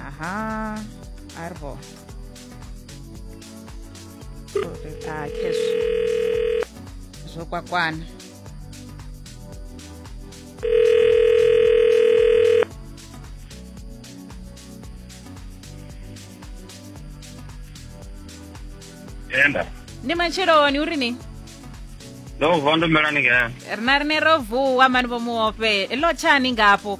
Aha, arvo. Kake zvokwakwana. enda Ndi matsheloni uri ni? ndo vuwa ndo mela ningea Rina rine ro vuwa mani vho muope. Lo tshani ngapo.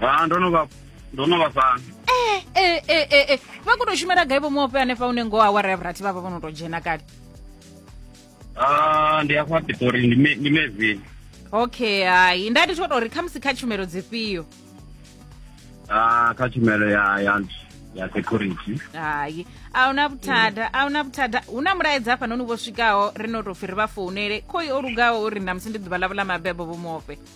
ha ndo no vha ndo no vha fhano eh eh eh eh eh vha khou tou shumela gai vho muope hanefha une ngoho awara ya vhurathi vha vha vho no tou dzhena kale Ah, ndi afha pitori ndi me- ndi mevini okay hai nda ndi tshi khou tou ri khamusi kha tshumelo dzifhio Ah, kha tshumelo ya ya ya security hai a huna vhuthada a huna vhuthada hu na mulaedza hafhanoni vho swikaho ri no tou pfhi ri vha founele khoi o lugaho uri ṋamusi ndi ḓuvha ḽavho ḽa mabebo vho muope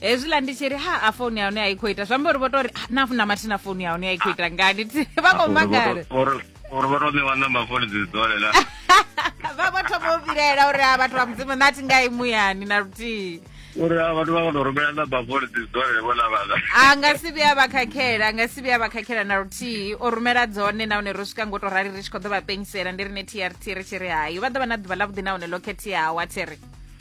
hezwiḽa ndi tshi ri ha a founu ya hone a i khou ita zwi amba uri vho tou ri "Ah, na na mathina founu ya hone a i khou ita ngani Thi- vha khou makala uri vho to ṋewa namba foni dzi dzole la vha vho thoma u vhilaela uri a vhathu vha mudzimu nṋe a thi ngai muyani na luthihi uri a vhathu vha kho to rumela namba foni dzi dzole vho la vhala a nga si vhuya vha khakhela a nga si vhuya vha khakhela na luthihi o rumela dzone nahone ro swika ngo to rali ri tshi khou ḓo vha penyisela ndi rine trt ri tshi ri hayo vha ḓo vha na ḓuvha ḽavhuḓi nahone ḽo khetheaho a thi ri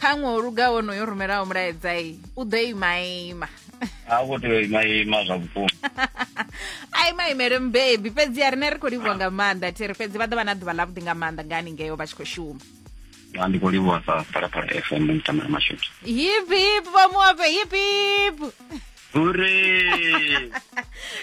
kha ṅwe o luga wonoyo rumelaho mulaedza i u ḓo ima ima ha u khou tea u ima ima zwa vhukuma a ima imele mubebi fhedzi a rine ri khou livhuwa nga maanḓa thiri fhedzi vha ḓo vha na ḓuvha ḽavhuḓi nga maanḓa nga haningeo vha tshi khou shuma ndi khou livhuwa sa phalaphala fm mtamela mashudu hip hip vha muape hip hip Hure!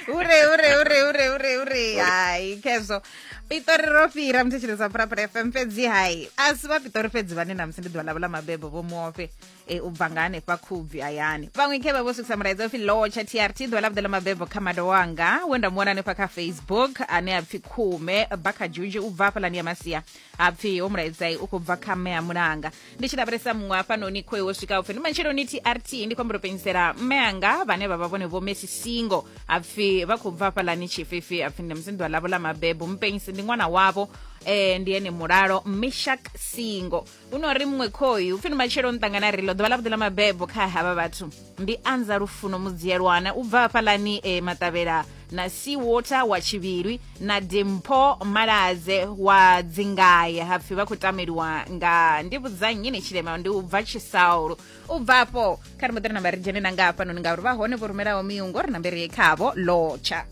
hure, hure, hure, hure, hure, hure. Hai, kezvo. Pitori ro fira muthetshelesa Purapura FM fhedzi hai. A si vha Pitori fhedzi vhane na musi ndi ḓuvha ḽavho ḽa mabebo vho muofe e u bva nga hanefha khubvi hayani. Vhaṅwe khe vha vho swikisa mulaedza upfi lotsha TRT ḓuvha ḽavhuḓi ḽa mabebo kha mada wanga we nda mu wana hanefha kha Facebook ane a pfi Khume Bakha Juju u bva hafhaḽani ya Masia. Ha pfi ho mulaedzai u khou bva kha mme a mulanga. ndi tshi lavhelesa muṅwe hafhanoni khoe wo swika upfi ndi matshelo ni trt ndi khombo penyisela mme anga vhane vha vha vhone vho messi singo apfi vha khou bva hafhalani tshifhifi apfi ndi musinḓwa ḽavho ḽa mabebo mpenyisi ndi ṅwana wavho eh ndi ene mulalo mishak singo hu no ri muṅwe khoyu upfi ndi matshelo ni ṱangana ri ḽo ḓuvha ḽa vhuḓi ḽa mabebo kha havha vhathu ndi anza lufuno mudziyelwana u bva hafhalani e maṱavhela na seawater wa tshivhilwi na dimpho malaze wa dzingaye hapfi vha khou tameliwa nga ndi vhudzannyi ni tshilema ndi u bva tshisaulu u bva afho kha ri muḓire namba ri dzhene na nga hafhanoni ngauri vha hone vho rumelaho miungo ri nambere ye khavho lotsha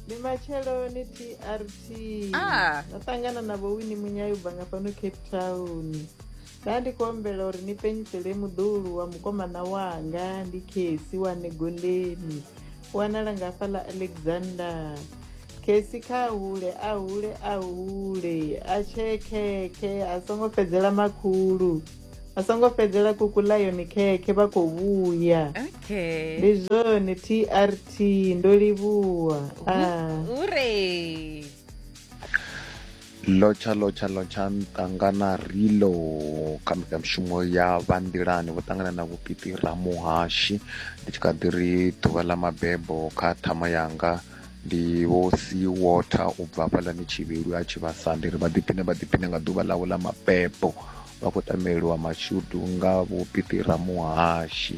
ndi matsheloni trt Ah. no ṱangana na vhowini munyayi u bva nga fhano cape town ndandikombela uri ni penyisele muḓulu wa mukomana wanga ndi khesi wa negondeni wanala nga hafha ḽa alexander khesi kha hule a hule a hule a tshee khekhe a songo fhedzela makhulu a songo fhedzela kuku ḽa yone khekhe vha khou vhuya okay ndi zwone trt ndo livhuwa ah. hure Lotsha lotsha lotsha nṱangana rilo kha mbekanyamushumo ya vha nḓilani vho ṱangana na vhupiti ramuhashi ndi tshi kha ḓi ri ḓuvha ḽa mabebo kha ṱhama yanga ndi vho si water u bva hafhaḽani tshivhelu a tshi vhasa ndi ri vha ḓiphine vha ḓiphine nga ḓuvha ḽawe ḽa mabebo vha khou tameliwa mashudu nga vhupiti ramuhashi